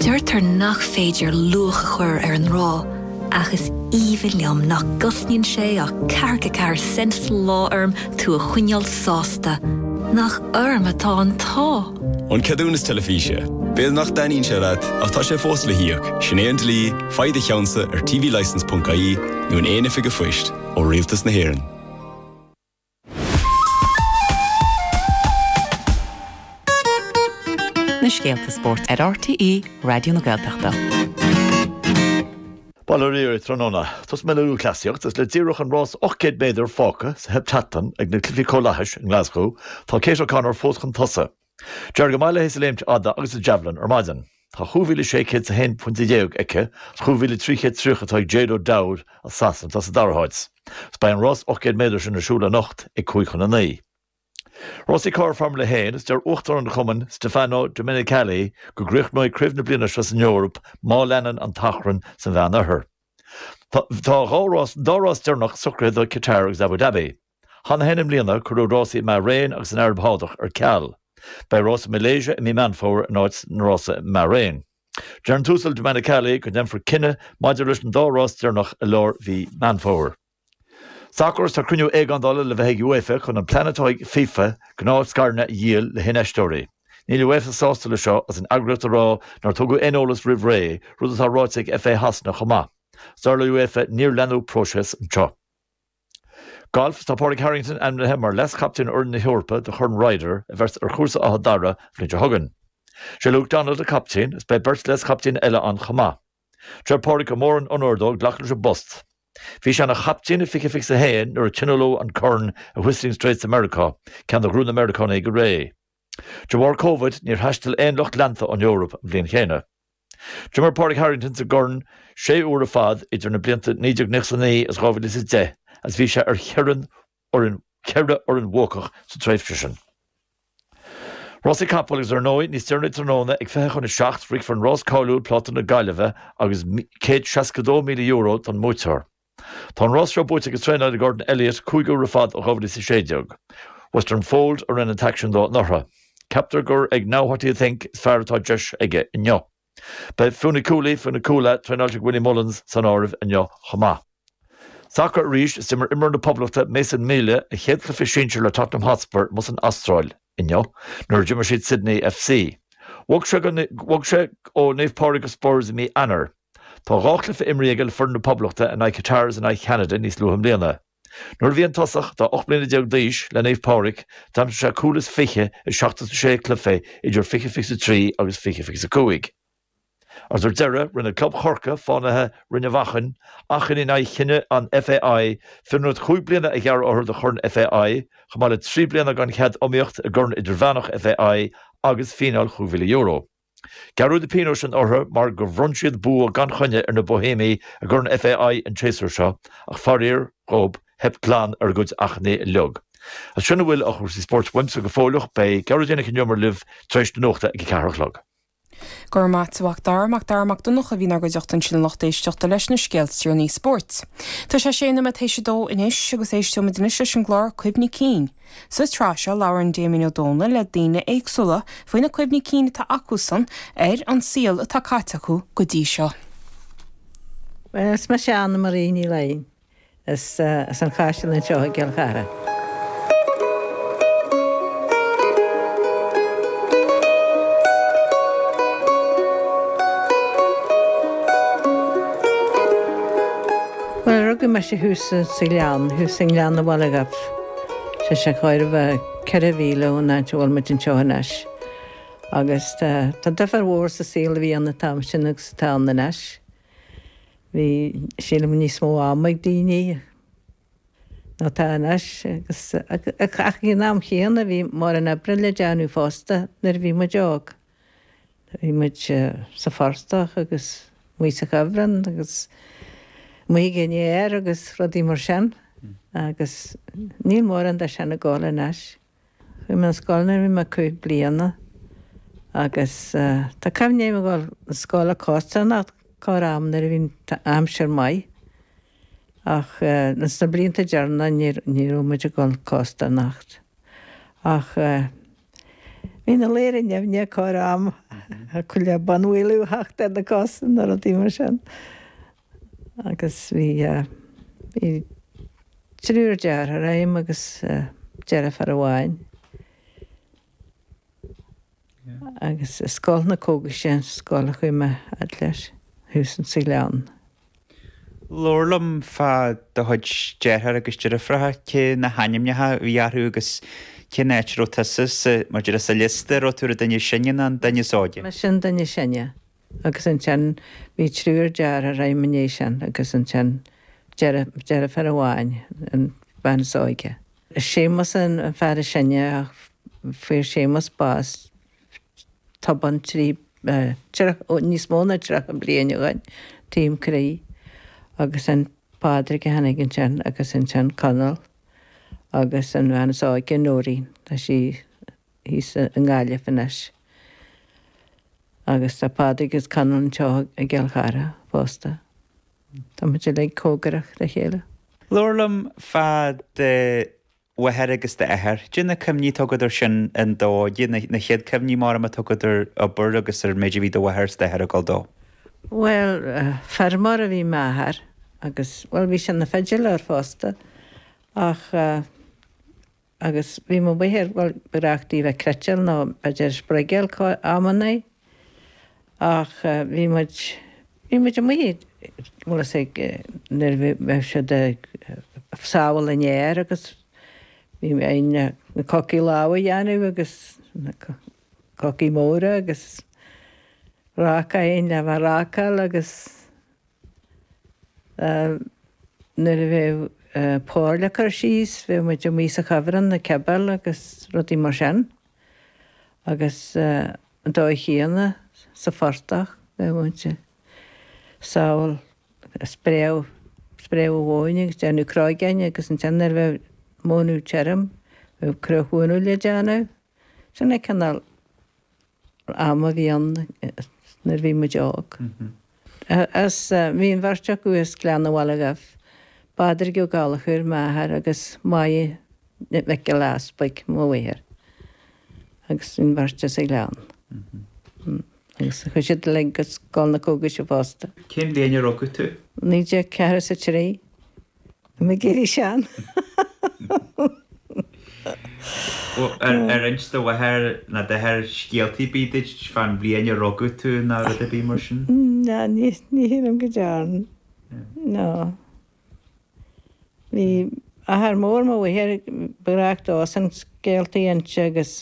Deirtear nach féidir luach a chur ar an ngrá, ach is aoibhinn liom nach gcosnaíonn sé ach ceathracha ceathair cent sa lá orm tú a choinneáil sásta. Nach orm atá an t-ádh! An Ceadúnas Teilifíse. B'fhéidir nach dtaitníonn sé leat, ach tá sé fós le híoc, sin é an dlí, faigh do cheannsa ar tvlicence.ie nó in aon oifig an phoist ó Rialtas na hÉireann. Na scéalta spóirt ar RTÉ Raidió na Gaeltachta. Bail ó Dhia oraibh tráthnóna. Tosóidh mé le lúthchleasaíocht is le díreach an rás 800 méadar fágtha sa Heptathlon ag na Cluichí Comhlathais i nGlasgow, tá Kate O'Connor fós chun tosaigh. D'éirigh go maith léi sa léimt fhada agus sa javelin ar maidin. Tá chúig mhíle sé chéad is a haon phointe dhéag aici is chúig mhíle trí chéad tríocha atá ag Jade O'Dowda as Sasana atá sa dara háit. Is beidh an rás ocht gcéad méadar sin ar siúl anocht ag cúig chun a naoi. Rásaí carr Foirmle a hAon is deir Uachtarán an Chumainn Stefano Domenicali go gcríochnóidh craobh na bliana seo san Eoraip má leanann an t-achrann sa Mheánoirthear. Tá an dá rás deireanach socraithe do Qatar agus Abu Dhabi. Cheana féin i mbliana cuireadh rásaí i mBairéin agus an Araib Shádach ar ceal. Beidh rás i Malaysia i mí Meán Fómhair in áit na rása i mBairéin. Deir an tUasal Domenicali go ndéanfar cinneadh maidir leis an dá rás deireanach i lár mhí Meán Fómhair. Sacar Tá cruinniú éigeándála le bheith ag UEFA chun an plean atá ag FIFA gnáthscaireanna a dhíol le hinfheisteoirí. Níl UEFA sásta le seo is an eagraíocht ag rá nár tugadh aon eolas roimh ré, rud atá ráite ag FA Shasana chomh maith. Is dar le UEFA níor leanadh próiseas anseo. Galf Tá Pádraig Harrington ainmnithe mar leaschaptaen fhoireann na hEorpa do Chorn Ryder a bheas ar chúrsa Áth Dara an bhliain seo chugainn. Sé Luke Donald an captaen is beidh beirt leaschaptaen eile ann chomh maith. Deir Pádraig gur mór an onóir dó glacadh leis an bpost. Bhí sé ina chaptaen i fiche fiche is a haon nuair a tionóladh an Corn i Whistling Straits i Meiriceá, ceann a ghnóthaigh na Meiriceánaigh go réidh. De bharr Covid níor thaistil aon lucht leanta ón Eoraip an bhliain chéanna. D'imir Pádraig Harrington sa gCorn sé uair ar fad idir na blianta 1999 agus 2010 agus bhí sé ar cheithre fhoireann bhuacach sa tréimhse sin. Rásaí capall agus ar ndóigh níos deireanaí tráthnóna ag fiche chun a seacht rithfear an rás cáiliúil Pláta na Gaillimhe agus céad seasca dó míle euro don mbuaiteoir. Tá an rás seo buaite ag an traenálaí Gordon Elliott cúig uair ar fad ó 2016. Western Fold a rinne an t-aicsean dó anuraidh. Ceaptar gur ag Now What Do You Think is fearr atá deis aige inniu. Beidh Funiculi Funicula, traenáilte ag Willie Mullins, san áireamh inniu chomh maith. Sacar arís, is d'imir imreoir na Poblachta, Mason Melia, a chéad chluiche sinsir le Tottenham Hotspur amuigh san Astráil inniu nuair a d'imir siad Sydney FC. Bhog sé ó Naomh Pádraig go Spurs i mí Eanáir. Tá dhá chluiche imrithe aige le foireann na Poblachta in aghaidh Qatar is in aghaidh Cheanada níos luaithe i mbliana. Nuair a bhí an tosach atá 18 mbliana d'aois le Naomh Pádraig, d'aimsigh sé cúl is fiche i 76 cluiche idir 20 fiche is a trí agus 20 fiche is a cúig. Agus ar deireadh rinne club Chorcaí Fánaithe, Rinn a' Mhachain, achainí in aghaidh chinneadh an FAI fionraíocht chúig bliana a ghearradh orthu de Chorn FAI, chomh maith le trí bliana gan chead iomaíocht i gCorn Idirmheánach FAI agus fíneáil chúig mhíle euro. Gearradh na pionóis sin orthu mar gur bhronn siad bua gan choinne ar na Boihéimigh i gCorn FAI an séasúr seo ach faraor dhób theip glan ar a gcuid achainí uilig. Is sin a bhfuil ó chúrsaí spóirt uaimse go fóilleach beidh Gearóidín Nic an Iomaire libh tar éis na nuachta ag a ceathair a chlog. Go raibh maith a't a Mhacdara, Macdara Mac Donncha a bhí inár gcuideachta ansin a lucht éisteachta leis na scéalta is deireanaí spóirt. Tá sé sé nóiméad tar éis a dó anois agus éisteoimid anois leis an gclár Cuimhní Cinn. Sa tsraith seo labhrann Damien Ó Dónaill le daoine éagsúla faoi na cuimhní cinn atá acusan ar an saol atá caite acu go dtí seo. Is mise Anna Marie Ní Laighin. Is as an Chaiseal anseo i gCill Chartha. Rugadh mise thuas sa Ghleann, thuas i nGleann an Bhaile Dhuibh. Tá sé chóir a bheith ceithre mhíle ón áit a bhfuil muid anseo anois. Agus tá, tá difear mhór sa saol a bhí ann an t-am sin agus atá ann anois. Bhí, sílim, níos mó ama ag daoine ná tá anois agus, ach ag an am chéanna bhí mórán oibre le déanamh fosta nuair a bhí muid óg. Bhí muid sa phortach agus muid sa chuibhreann agus amuigh ag an fhéar agus rudaí mar sin agus níl mórán de sin ag gabháil anois. Chuaigh mé na scoile nuair a bhí mé cúig bliana agus tá cuimhne agam ag dul na scoile costarnocht corr am nuair a bhí an aimsir maith ach ins na blianta deireanacha ní raibh muid ag dul costarnocht ach Bhí na ladhra nimhneach corr am acu le bonnbhualadh a theacht ar na cosa nó rudaí mar sin agus bhí bhí triúr dearthár a'm agus deirfiúr amháin agus i scoil na Cógaise, sin an scoil a chuaigh mé fhad leis, thuas insa Ghleann. Labhair liom fá do chuid dearthár agus deirfiúracha, cé na hainmneacha a bhí orthu agus cén áit a raibh tusa sa, maidir le, sa liosta, a raibh tú ar an duine is sine nó an duine is óige? Mise an duine is sine agus ansin bhí triúr dearthár agam i ndiaidh sin agus ansin deirfiúr amháin, an bhean is óige. Séamus an fear is sine ach fuair Séamus bás tobann trí níos mó ná 30 bliain ó shin taom croí agus an Pádraig a tháinig ansin agus ansin Conall agus an bhean is óige Noreen tá sí thíos i nGaillimh anois agus tá Pádraig agus Conall anseo i gCill Chartha fosta. Tá muid uilig comhgarach dá chéile. Labhair liom fá do mháthair agus d'athair. Caidé na cuimhní atá agat air sin an dó, caidé na chéad cuimhní móra atá agat ar obair agus ar an méid a bhí do mháthair is d'athair ag dul dó. Bhuel, feirmeoir a bhí m'athair agus, bhuel, bhí sé ina pheidléir fosta ach, agus bhí mo mháthair, ba ghnách di bheith ag cniotáil nó b'fhéidir ag spruigeáil amannaí ach bhí muid, bhí muid amuigh nuair a bheadh siad ag sábháil an fhéir agus bhí againn le na cocaí lámh a dhéanamh agus na cocaí móra agus ráca againn le bheith ag rácáil agus nuair a bheadh pór le cur síos bheadh muid amuigh sa chuibhreann ag cibeáil agus rudaí mar sin. agus an dóigh chéanna sa phortach bheadh muid ag sábháil. Spréadh spréadh an mhóin agus déanamh cróigeáin agus ansin nuair a bheadh mónadh tirim bheadh cruach mhónadh le déanamh. Sin é cineál am a bhí ann nuair a bhí muid óg. Bhí an bheirt acu as Gleann an Bhaile Dhuibh, Pádraig Ó Gallchóir, m'athair, agus Máire Nic Giolla Easpaig, mo mháthair, agus an bheirt as an Ghleann. Agus chuaigh siad uilig go Scoil na Cógais fosta. Cén bhliain a rugadh tú? 1943. I mo ghiorraí sean. Ar inst do mháthair ná d'athair scéaltaí ar bith duit faoin mbliain a rugadh tú ná rud ar bith mar sin? No, ní shílim go dearn. No. Bhí athair mór mo mháthar, ba ghnách dósan scéaltaí a inse agus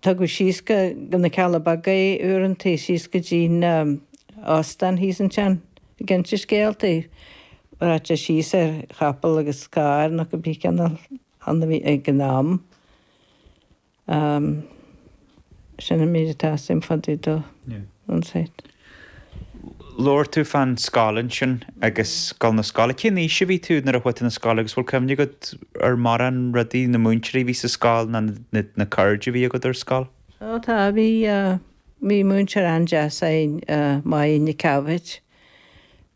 Tugadh síos go na Cealla Beaga é uaireanta, síos go dtí na h-óstáin thíos ansin ag inse scéaltaí. Rachadh sé síos ar chapall agus carr nó cibé cineál ann a bhí ag an am. Sin an méid atá a fhios agam fá dtaobh dó. Yeah. An site. Labhair tú fan scoil ansin agus a ghoil na scoile. Cén aois a bhí tú nuair a chuaigh tú na scoile agus bhfuil cuimhne agat ar morán rudaí, na múinteoirí a bhí sa scoil ná na cairde a bhí agat ar scoil? Ó tá, bhí, bhí múinteoir an-deas a'inn Máirín Nic Ceabhaid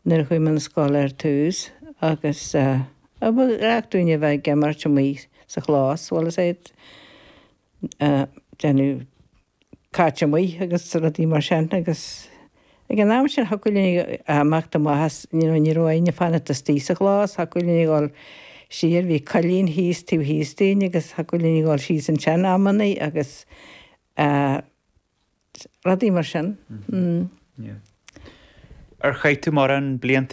nuair a chuaigh mé na scoile ar tús agus gach duine a bheith ag imirt amuigh sa chlós bhuel is é déanamh caite amuigh agus rudaí mar sin agus ag an am sin thiocfadh linn imeacht amach as, you know, ní raibh éinne ag fanacht istigh sa chlós, thiocfadh linn a dhul siar, bhí coillín thíos, taobh thíos dínn agus thiocfadh linn a dhul síos ansin amannaí agus rudaí mar sin. Ar chaith tú morán blianta